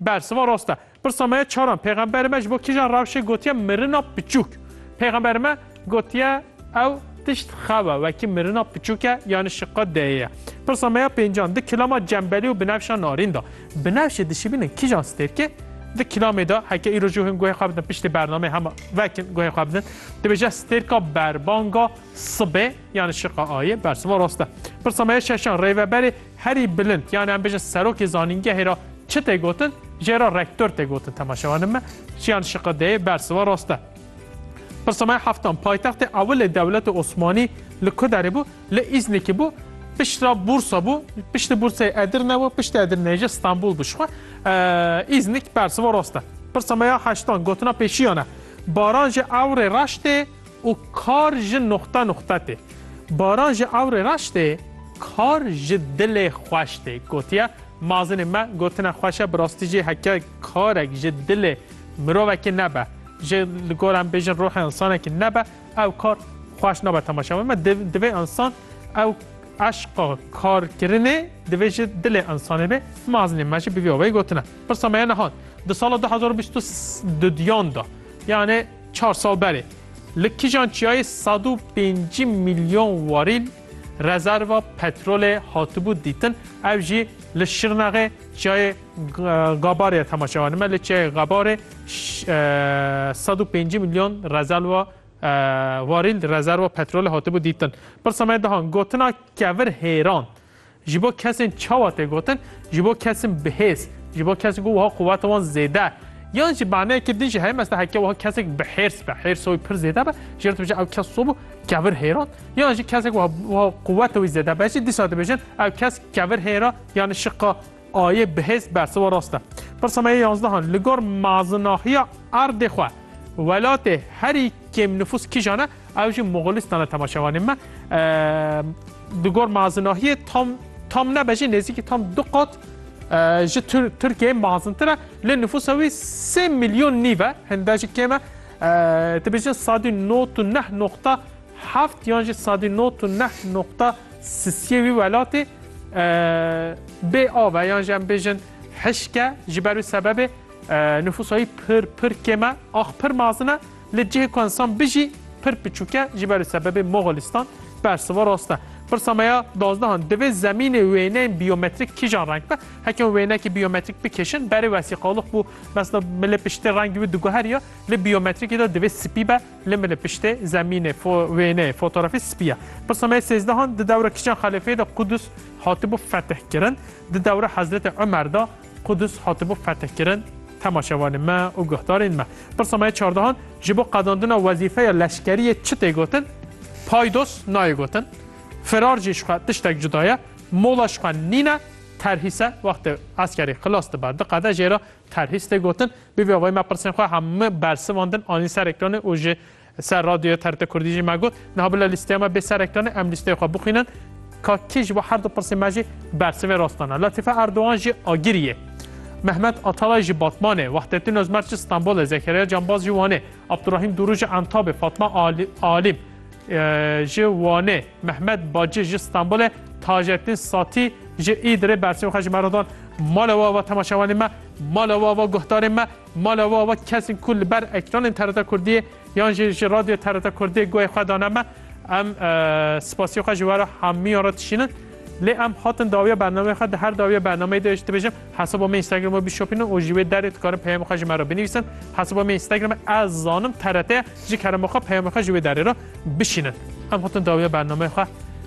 Bersiva rast e. Pirsa me ye çaran, Pêxemberê me ji bo kîjan rewşê gotiye mirina piçûk? Pêxemberê me gotiye ew tişt xew e, wekî mirina piçûk e yanî şiqat deyê ye. Pirsa me ya pêncan, di kilama cembelî û binevşa narîn de binevşê dişibînin kîjan stêrkê? Di kilamê de heke îro jû hin guhê xwe bidin piştî bernameyê hema vekin guhê xwe bidin dibêje stêrka berbanga sibê yanî şiqa ayê. Bersiva rast e. Pirsa me ya şeşan, Rêveberê Herî bilind yan em bêjin serokê zanîngehê re çi tê gotin, jê re rektor tê gotin temaşevanên me çiyan şiqe deyê bersiva rast e. Pirsa me ya heftan, paytextê ewilê dewleta Osmanî li ku derê bû? Li Îznikê bû, piştra Bursa bû, piştî Burseyê Edirne bû, piştî Edirneyê jî Stenbol bû. Jixwe Îznik bersiva rast e. Pirsa me ya heştan, gotina pêşiyan e, Baran ji ewrê reş tê? û kar ji nuqta nuqta tê. Baran ji ewrê reş tê, kar ji dilê xweş tê. Gotiye, Mazinê me gotina xweş e, bi rastî jî heke karek ji dilê mirovekî nebe, ji li gor em bêjin ruhê însanekî nebe, ew kar xweş nabe temaşe we. Me divê însan ew eşqa karkirinê divê ji dilê însanê bê. Mazinê me jî bi vî awayî gotine. Pirsa me ye niha di sala du hezar û bîst û duyan de, yanê, Çar sal berê li kijan çiyayê sed û pêncî milyon warîl rezerva petrolê hatibû dîtin, ev jî li Şirnexê çiyayê Gabarê ye temaşe anîme. Li çiyayê Gabarê sed û pêncî milyon rezerva warîl rezerva petrolê hatibû dîtin. Pirsa me dihan gotina kevir hêran Ji bo kesên çawa tê gotin, ji bo kesin bihêz, ji bo kesin ku wiha quweta wan zêde yan ji maneyekî din jî heye mesta heke wiha kesek bi hêrs be, hêrsa wî pir zêde be, jê re dibêje ew kes sobû kevir hêra yan jî kesek wiha wiha quweta wî zêde be jî dîsa dibêjin ew kes kevir hêra yanî şiqa ayê bihêz bersiva rast e. Pirsa me yê yanzdehan li gor mazinahiya erdê xwe welatê herî kêmnifûs kîjan e? Ew jî Moxolîstan e temaşevanên me. Di gor mazinahiyê tam tam nebe jî nêzîkî tam du qat ji Tirkiyeyê mazintir e. Lê nifûsa wî sê milyon nîv e, hinde jî kêm e. Dibêjin sadî not û neh noqta heft yan jî sadî not û neh noqta sisiyê wî welatê bê av e yan jî em bêjin hişk e. Ji ber wî sebebê nifûsa wî pir pir kêm e. Ax pir mazin e. Li cihê ku ensan bijî pir piçûk e, ji ber sebebê Moxolistan bersiva rast e. Pirsa me ya dazdehan, divê zemînê wêneyên bîyometrik kîjan reng be? Heke hûn wêneyekî bîyometrik bikêşin, berê wesîqalix bû, mesela milê piştê rengî wî diguheriya, li bîyometrikî de divê spî be, li milê piştê zemînê, fo, wêneyê, fotografî spî ye. Pirsa me ya sêzdehan, di dewra kîjan xelîfeyê de Qudus hatibû fetihkirin? Di dewra Hezretê Umer de, Qudus hatibû fethkirin, temaşevanên me û guhdarên me pirsa me ya çardehan ji bo qadandina wezîfeya leşkeriyê çi tê gotin? Paydos nayê gotin, firar jî ji xwe tiştek cuda ye, mola ji xwe nîne, terhîs e, wextê eskerî xilas dibe, diqede jê re terhîs tê gotin. Bi vî avayî me pirsên xwe hemû bersivandin anîn ser ekranê û ji Li ser radyoya TRT Kurdî jî me got, niha bila lîsteya me bê serektanê em lîsteyê xwe bixwînin, ka kî ji bo her du pirsên me jî bersivê rastan e. Letîfe Erdogan jî Agirî ye. Mehmet Atalay jî Batmanê, Wahdettin Ozmer jî Stenbolê, Zekeriya Canbaz jî Wanê, Abdurahîm Dûrû jî Entabê, Fatma Alîm ji Wanê, Mehmet Baci ji Stenbolê, Tajettin Satî ji Îdirê bersivê xwe ji me re dan. Mala we ava temaşevanên me, mala we ava guhdarên me. Mala we wek kesên ku li ber ekranên TRT Kurdiyê yan jî ji radyoya TRT Kurdiyê guhê xwe dane me, em spasiyê xwe ji we re hemiyan re dişînin. Lê em hatin dawiya bernameyê xwe di her dawiya bernameyê de ji dibêjim hesaba me Instagramê bişopînin û ji wê derê dikarin peyamê xwe ji me re binivîsin. Hesaba me Instagramê ez zanim TRT ye ji kerema xwe peyamê xwe ji wê derê re bişînin. Em hatin dawiya bernameyê xwe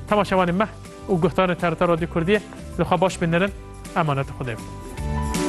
temaşevanên me û guhdarên TRT Radyo Kurdiyê li xwe baş binirin. Emaneta Xwedê be.